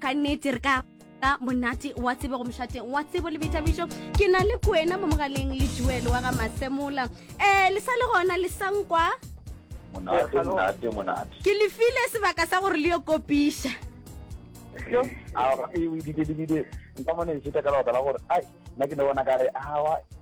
ka nnete re ka ka monate wa tsebe go mošateng wa tsebo le boithabišo ke na le kwena mo mogaleng le juelo wa ga masemola um eh, le sa le gona le sankwa ke lefile sebaka sa gore le yo kopiša nka mone e šeta ka lebaka la gore ai nna ke ne bona ka re awa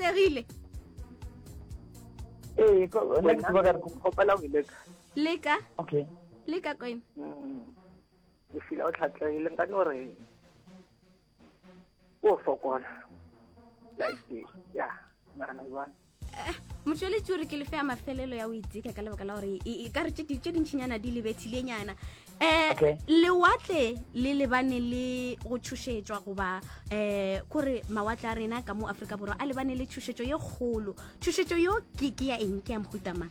atlegile ee kopela go leka leka okay leka kwena mm. o fila o tlhatlegile nka no re o fokola ya nagana jwang eh, motšweletši o re ke lefe ya mafelelo ya o iteka ka lebaka la gore e, e ka re tše dintšhinyana di lebethilenyana um eh, lewatle le lebane le go tšhošetšwa goba um kore mawatle a rena ka mo aforika borwa a lebane le tšhošetšo ye kgolo tšhošetšo yo ke ya eng ke ya mohutamang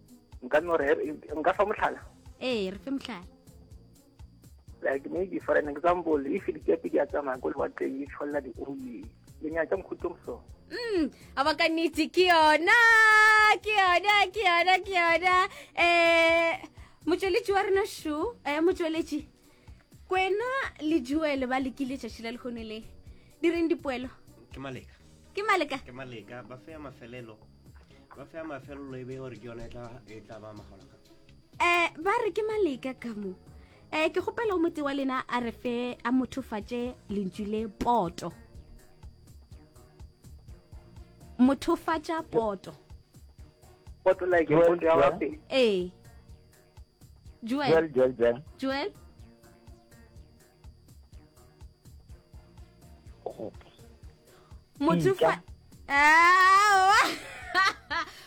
nka no re nka fa mohlala ee re fe mohlala like maybe for an example if dikepe di a tsamaya ko lewatleng di tshwalela di-oil le nyatsa mokhutlong so mm a ba ka nnete ke yona ke yona ke yona ke yona um motsweletši wa rena sho um motsweletši kwena le joele ba lekile tšatši la lekgono le di reng dipoelo ke maleka ke maleka ke maleka ba feya mafelelo ba feya mafelelo e be gore ke yone e tla ba magologa um ba re ke maleka ka mo um ke kgopela o mote wa lena a re fe a mothofatše lentšu le poto mothofatša poto poto like ee Joel. Joel, Joel, Joel. Joel. Motsofa. Ah.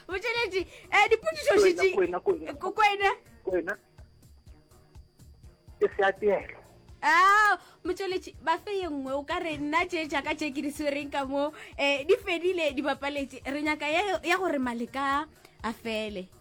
O tšeletse eh dipotšišo di di kwena kwena. Kwena. Kwena. Ke se atelo. Ah, motšweletši ba fe ye nngwe o ka re nna tše jaaka tše ke di swereng ka mo um di fedile di bapaletše re nyaka ya gore maleka a fele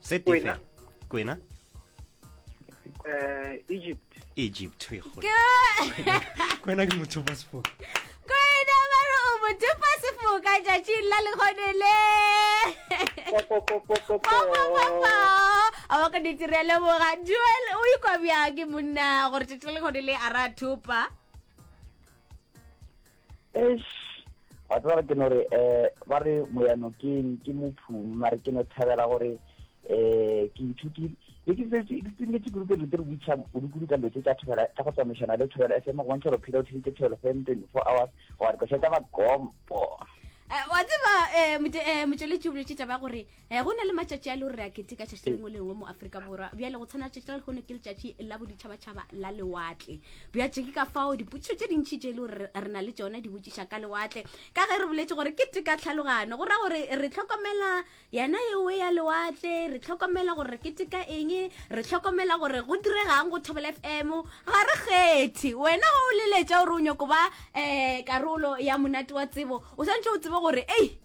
se tefe kwena eh, egypt egypt kwena ke motho ba sefoka kwena ba re o motho ba sefoka tšatšing la lekgone le a wa ka ditirele boga duel o ikwa bjake monna gore tšatši le lekgone le a ra thupa eish wa tseba ke no re eh ba re moyano ke ke mophumi mare ke no thabela gore eh ke ithutile be ke setse ke tsenetse kudu ke re re butša kudu ka letse tša thobela tša go tsamaisana le thobela fm go bontšha gore phela o theditse thobela fm twenty four hours go wa dikoša tsa bagompo eh, wa tseba eh, mote- eh, motšweletši o boletše taba ya gore um go na le matšatši a le gore re a keteka tšatši le lengwe lengwe mo aforika borwa bjale go tshwana tšatši la lekgono ke letšatši la boditšhabatšhaba la lewatle bjatše ke ka fao dipotšišo tše dintšhi tše e le gore re na le tšona di botšiša ka lewatle ka ge re boletse gore ke teka tlhalogano go ra gore re tlhokomela yena ewe ya lewatle re tlhokomela gore re keteka eng re tlhokomela gore go diregang go thobela f m ga re kgethe wena o leletša gore o nyoko ba um karolo ya monate wa tsebo o swantšhe o tsebe gore ei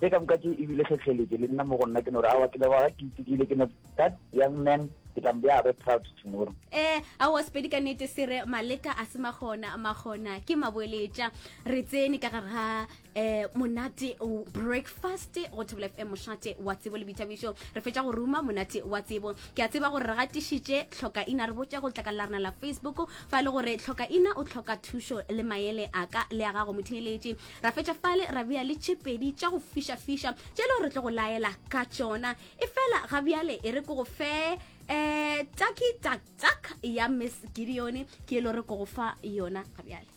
Tše ka moka tše e bile hlohleletše, le nna mo go nna. Ke no re, Aowa, ke leboga ke itekile. Ke no, That young man, ke tla mo bea gagwe proud tomorrow. Ee, aowa, Sepedi ka nnete se re, Maleka a se makgona, makgona ke maboeletša. Re tsene ka gare ga eh, monate breakfast go Thobela FM, mošate wa tsebo le boithabišo. Re fetša go ruma monate wa tsebo. Ke a tseba gore re gatišitše Hlokaina re botša go letlakala la rena la Facebook fa e le gore Hlokaina o hloka thušo le maele a ka le a gago motheeletši. ra fetša fale ra bea le tše pedi tša go fišafiša tše leo re tlo go laela ka tšona e fela ga bjale e re ko go fe um taki taktak ya miss gideone ke e lo re ko go fa yona ga bjale